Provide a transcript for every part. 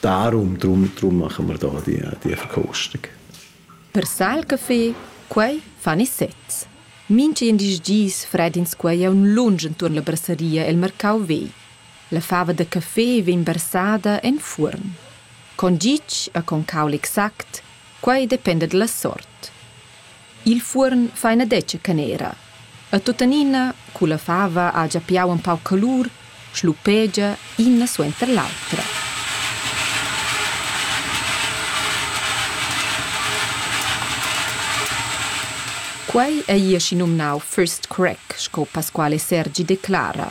Darum, drum, drum machen wir da die, die Verkostung. Per Saalcafé, quei fan i sezs. Mintgin dis dis fredins quei aun lunsch entuorn la brasseria el mercau vegl. La fava da café vegn barsada en fuorn. Con gitg e con caul exact, quei dependa dalla sort. Il fuorn fa ina detga canera. E tuttenina, culla fava ha gia piau in pau calur, schlupegia ina suenter l'autra. Quei ei aschi numnau first crack, sco Pasquale Sergi declara,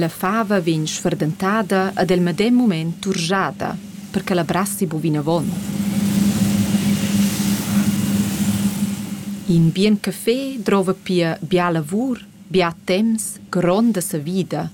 La fava vegn sferdentada ed el medem mument turschada, per che la brassi bu vinavon. In bien café drova pia bia lavur, bia temps, gronda savida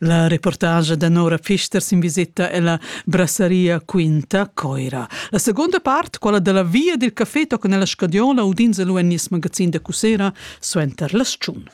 La reportagia da Nora Fister sin visita ella brasseria Quinta Coira. La seconda part, quella della via del café tocca nella scadiola udins e lu en nies magazin da Cusera suenter las tschun.